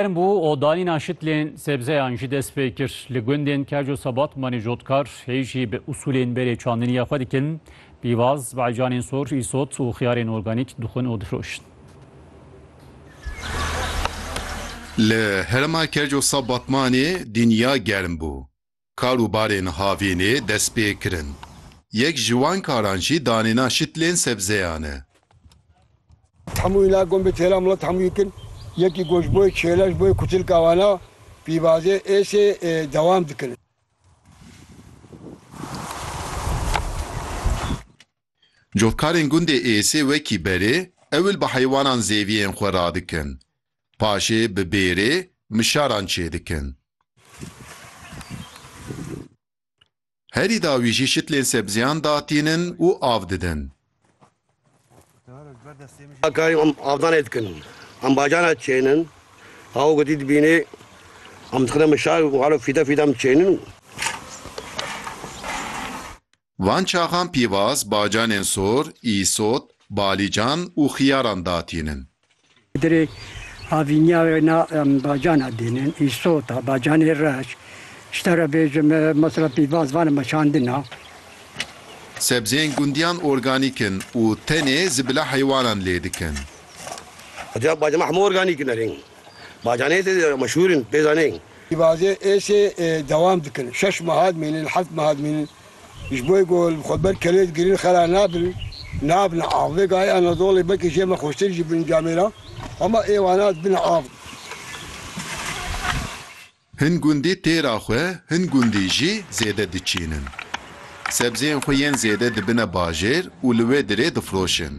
Germ bû û danîna şitlên sebzeyan jî dest pê kir. Li gundên Keco Sebatmanê cotkar hê jî bi usûlên berê çandinî ya xwe dikin. Pîvaz, baîcanên sor, îsot û xiyarên organîk dixwin û difroşin. Li herêma Keco Sebatmanê dînya germ bû. Kar û barên havînê dest pê kirin. Yek ji wan karan jî danêna şitlên sebzeyan e. Hemû înan gon bi têra milet hemû yek in. Yekî gon ji bo yê çêle, ji bo yê kutilka wan a, pîvazê êsê dewam dikin. Cotkarên gundê êsê wekî berê, ewil bi heywanan zêviyên xwe radikin. Paşê bi bêrê mişaran çêdikin. Herî dawî jî şitlên sebziyan datînin û av didin. Karî em avdanê dikin. Em bajana çênin. Aw gotî dibînê. Em dixine mişar û halo fîde fîde em çênin. Van çaxan pîvaz bacanên sor, îsot, balîcan û xiyaran datînin. Dirê havîniya wê na em bacana dînin, îsota, bacanê reş, tişta re bêjim mesela pîvaz van me şandina. Sebzeyên gundiyan organîk in û tenê ji bila heywanan lê dikin. Etiya bacama hemû organîk in erên. Bacanê tê de meşhûr in pê zanê. Pêvaze êşê dewam dikin. Şeş meha dimînin, heft meha dimînin. Ji bo ku li xwe ber kelê digirin xera nabin, nabin av. Vê gayê Anadolê belkî jê me xweştir jî bin camê re. Hema êwana dibin av. Hin gundî têra xwe, hin gundî jî zêde diçînin. Sebzeyên xwe yên zêde dibine bajêr û li wê dirê difiroşin.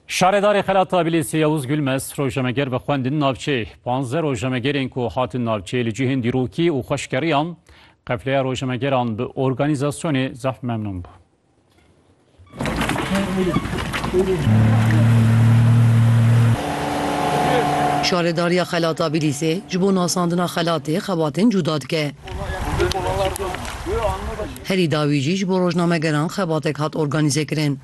Şaredarê Xela Tabilêsê Yavuz Gülmez rojemeger bi xwendin navçeyê. Panze rojemegerên ku hatin navçeyê li cihên dîrokî û xweşkeriyan qefleya rojemegeran bi organîzasyonê zehf memnûn bû. Şaredariya Xela Tabilîsê ji bo nasandina xelatê xebatên cûda dike. Herî dawî jî ji bo rojnamegeran xebatek hat organîzekirin.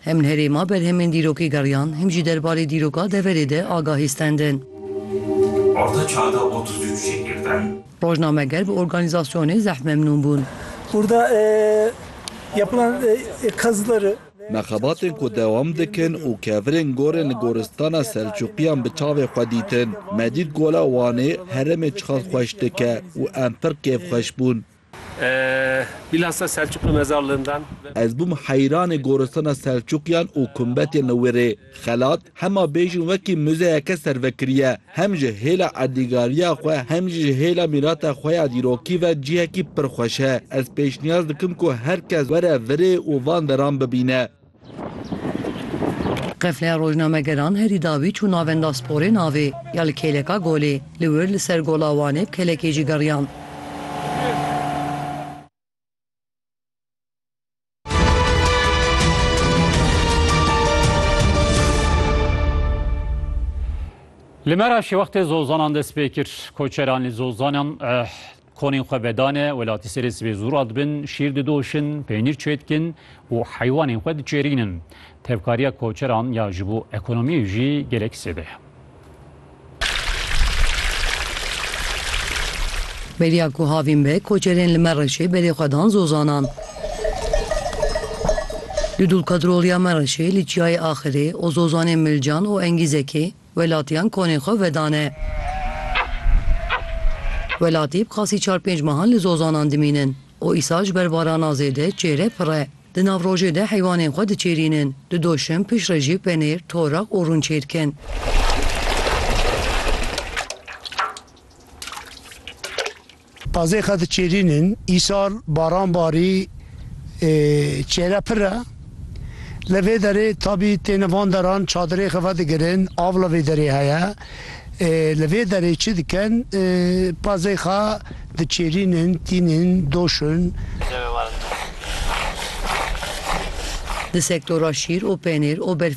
Hem li herêma berhemên dîrokê geriyan, hem jî derbarê dîroka deverê de agahî stendin. Orta çanda otuz üç jî girtin. Rojnameger bi organîzasyonê zehf memnûn bûn. Burada yapılan kazıları. Me xebatên ku dewam dikin û kevirên gorên li goristana Selçûqiyan bi çavê xwe dîtin. Me dît gola Wanê herêmê çiqas xweş dike û em pir kêfxweş bûn. Bilhassa Selçuk li mezar lindan ve. Ez bûm heyranê goristana Selçukiyan û kumbetên li wê rê. Xelat hema bêjin wekî muzeyeke servekirî ye. Hem ji hêla erdîgariya xwe hem jî ji hêla mîrata xwe ya dîrokî ve cihekî pir xweş e. Ez pêşniyaz dikim ku her kes were virê û van deran bibîne. Qefleya rojnamegeran herî dawî çû Navenda Sporê navê ya li kêleka golê. Li wir li ser gola Wanê bi kelekê jî geriyan. Li Meraşê wextê zozanan dest pê kir, koçeran li zozanan Konên xwe vedane, welatî serê sibê zûra dibin, şîr didoşin, peynîr çêdikin û heywanên xwe diçêrînin. Tevkariya koçeran ya ji bo ekonomiyê jî gelek zêde ye. Beriya ku havîn be, koçerên li Mereşê berê xwe dan Zozanan. Li Dulkadroliya Mereşê, li Çiyayê Axirê, Ozozanê Milcan û Engîzekê, Welatiyan konê xwe vedane. Welatî bi qasî çar pênc mehan li zozanan dimînin û îsal ji ber varana zêde çêre pir e. Di navrojê de heywanên xwe diçêrînin, di doşim pişt re jî penêr, toreq û rûn çêdikin. Tazê xe diçêrîn in. Îsal baran barî ê çêre pir e. Li vê derê tabî têne van deran çadirê xe vedigirin av li vê derê heye. Ê li vê derê çi dikin? Ê pazê xe diçêrîn in, tîn in, doş in. Di sektora şîr û pênêr û berfê